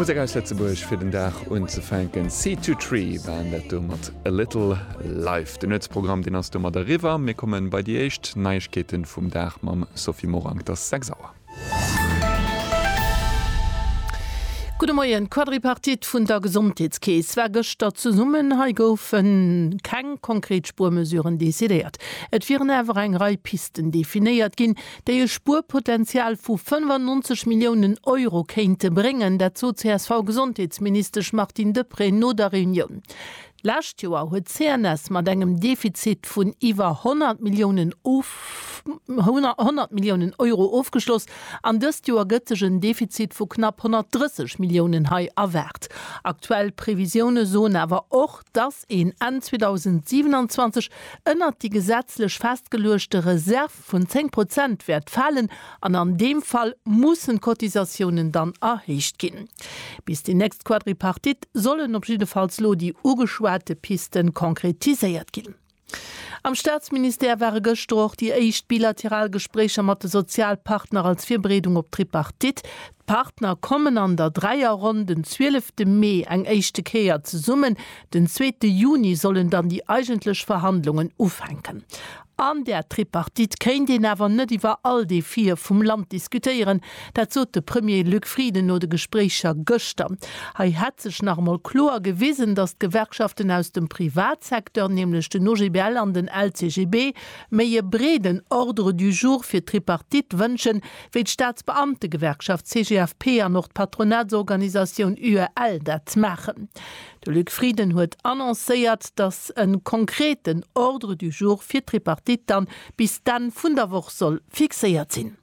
Musek aus Lëtzebuerg fir den Dag unzefänken. Seed to Tree waren dat do mat A Little Life. Den Nuetsprogramm deen ass domat eriwwer. Mir kommen bei déi éischt Neiegkeeten vum Dag mam Sophie Morang. Et ass 6 Auer. Gudde Moien. D'Quadripartite vun der Gesondheetskeess war gëschter zesummen. Hei goufe keng konkret Spuermesuren decidéiert. Et wieren awer eng Rei Pisten definéiert ginn, déi e Spuerpotenzial vu 95 Milliounen Euro kéinte bréngen. Dat sot d'CSV-Gesondheetsministesch Martine Deprez no der Reunioun. D'lescht Joer huet d'CNS mat engem Defizit vun iwwer 100 Milliounen 100 Milliounen Euro ofgeschloss an dëst Joer gëtt sech en Defizit vu knapp 130 Milliounen hei erwaart. Aktuell Previsioune soen awer och, dass een Enn 2027 ënnert déi gesetzlech festgeluechte Reserv, vun 10 Prozent wäert falen an an deem Fall mussen d'Cotisatiounen dann erhéicht ginn. Bis déi nächst Quadripartite sollen op jiddefalls lo déi ugeschwate Piste konkretiséiert ginn. Am Staatsministère ware gëschter och déi éischt bilateral Gespréicher mat de Sozialpartner als Virbereedung op d'Tripartite. D'Partner kommen an der Dräierronn den 12 te Mee eng éischte Kéier zesummen. Den zweete Juni sollen dann déi eigentlech Verhandlungen ufänken. An där Tripartite kéint een awer net iwwer all Defie vum Land diskutéieren. Dat sot de Premier Luc Frieden no de Gespréicher gëschter. Hei hätt sech nach emol kloer gewisen, datt d'Gewerkschaften aus dem Privatsecteur, nämlech den OGBL an den LCGB, méi e breeden Ordre du jour fir d'Tripartite wënschen, wéi d'Staatsbeamtegewerkschaft CGFP an och d'Patronatsorganisatioun UEL dat maachen. De Luc Frieden huet annoncéiert, datt e konkreten Ordre du jour fir d'Tripartite dann bis d'Enn vun der Woch soll fixéiert sinn.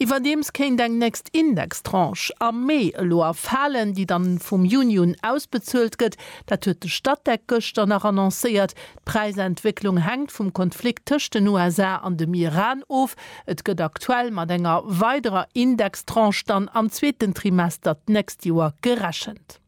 Iwwerdeems kéint eng nächst Indextranche am Mee elo erfalen, déi dann vum Juni un ausbezuelt gëtt. Dat huet de Statec gëschter nach annoncéiert. D'Präisentwécklung hänkt vum Konflikt tëscht den USA an dem Iran of. Et gëtt aktuell mat enger weiderer Indextranche dann am zweeten Trimester d'nächst Joer gerechent.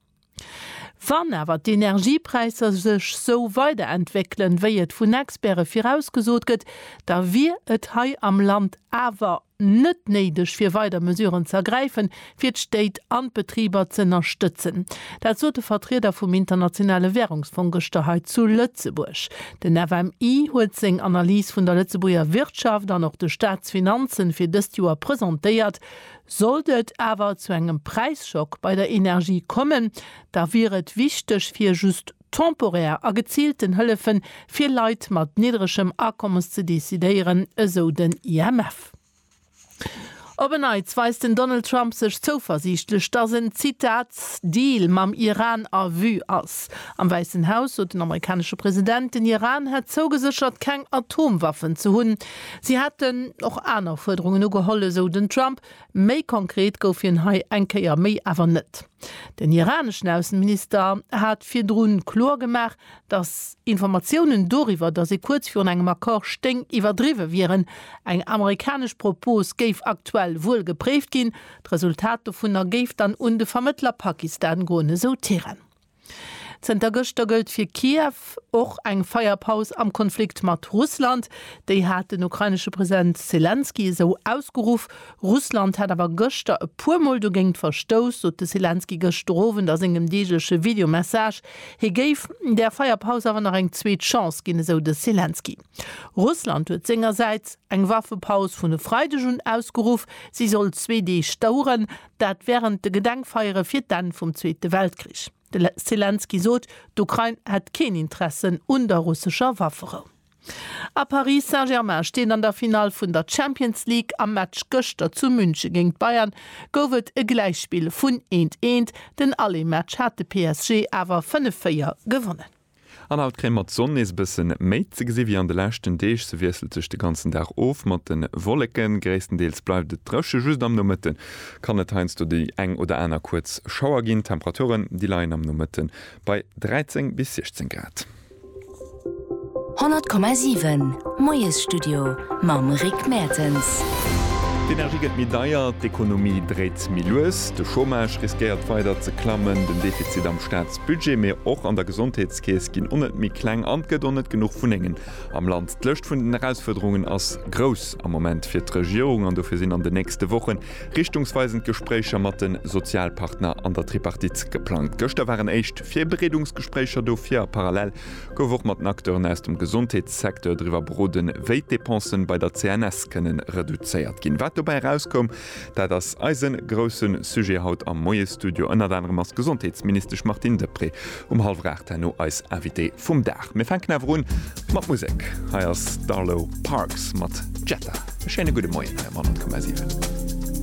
Wann awer d'Energiepräisser sech esou weiderentwéckelen, wéi et vun Experte virausgesot gëtt, da wier et hei am Land awer net néideg fir weider Mesuren ze ergräifen, fir d'Stéit an d'Betriber z'ënnerstëtzen. Dat sot de Vertrieder vum Internationale Wärungsfong gëschter hei zu Lëtzebuerg. Den FMI huet seng Analys vun der Lëtzebuerger Wirtschaft an och de Staatsfinanzen fir dëst Joer presentéiert. Sollt et awer zu engem Präisschock bei der Energie kommen, da wier et wichteg fir just temporär a geziilten Hëllefe fir Leit mat niddregem Akommes ze decidéieren, esou den IMF. Op en Neits weist den Donald Trump sech zouversiichtlech, datt en, Zitat, Deal mam Iran a Vue ass. Am Wäissen Haus sot den amerikanesche President, den Iran hätt zougeséchert keng Atomwaffen ze hunn. Si hätten och aner Fuerderungen ugeholl, esou den Trump. Méi konkret gouf hien hei eng Kéier méi awer net. Den iraneschen Ausseminister hat virdrun kloer gemaach, datt Informatiounen doriwwer, datt ee kuerz virun engem Accord stéing, iwwerdriwwe wieren. Eng amerikanesch Propos géif aktuell wuel gepréift ginn. D'Resultat dovunner géif dann un de Vermëttler Pakistan goen, esou Teheran. Zënter gëschter gëllt fir Kiew och eng Feierpaus am Konflikt mat Russland. Déi hat den ukrainesche President Selenskyj esou ausgeruff. Russland hätt awer gëschter e puer Mol dogéint verstouss, sot de Selenskyj gëschter Owend a sengem deegleche Videomessage. Hie géif der Feierpaus awer nach eng zweet Chance ginn, esou de Selenskyj. Russland huet sengersäits eng Waffepaus vun e Freideg un ausgeruff. Si soll zwee Deeg daueren. Dat wärend de Gedenkfeiere fir d'Enn vum Zweete Weltkrich. De Selenskyj sot, d'Ukrain hätt keen Interessen un der russescher Wafferou. A Paris Saint-Germain steet an der Finall vun der Champions League. Am Match gëschter zu Münche géint d'Bayern gouf et e Gläichspill vun eent, eent. Den Aller-Match hat de PSG awer 5, 4 gewonnen. An haut kréie mer d'Sonn nees e bësse méi ze gesi wéi an de leschten Deeg. Se wiesselt sech de ganzen Dag of mat de Wolleken. Gréisstendeels bleift et dréche, just am Nomëtte kann et heiansdo déi eng oder aner kuerz Schauer ginn. D'Temperaturen, déi leien am Nomëtte bei 13 bis 16 Grad. 100,7 Moiesstudio mam Rick Mertens. D'Energie gëtt méi deier, d'Ekonomie dréit méi lues, de Chômage riskéiert weider ze klammen, den Defizit am Staats. Budget, mee och an der Gesondheetskeess ginn on net méi kleng an 't gëtt on net genuch Wunnengen am Land. D'Lëscht vun den Erausfuerderungen ass grouss am Moment fir d'Regierung an dofir sinn an den nächste Wochen richtungsweisend Gespréicher mat de Sozialpartner an der Tripartite geplangt. Gëschter waren éischt Virbereedungsgespréicher dofir a parallel gouf och mat den Acteuren aus dem Gesondheetssecteur driwwer beroden, wéi d'Depensen bei der CNS kënnen reduzéiert ginn. Wat dobäi erauskoum, Dat ass eise grousse Sujet haut am Moiesstudio. Ënnert anerem ass d'Gesondheetsministesch Martine Deprez um hallwer aacht herno eis Invitée vum Dag. Mir fänken awer un mat Musek. Hei ass d'Arlo Parks mat Jetta. E schéine gudde Moien hei am 100,7.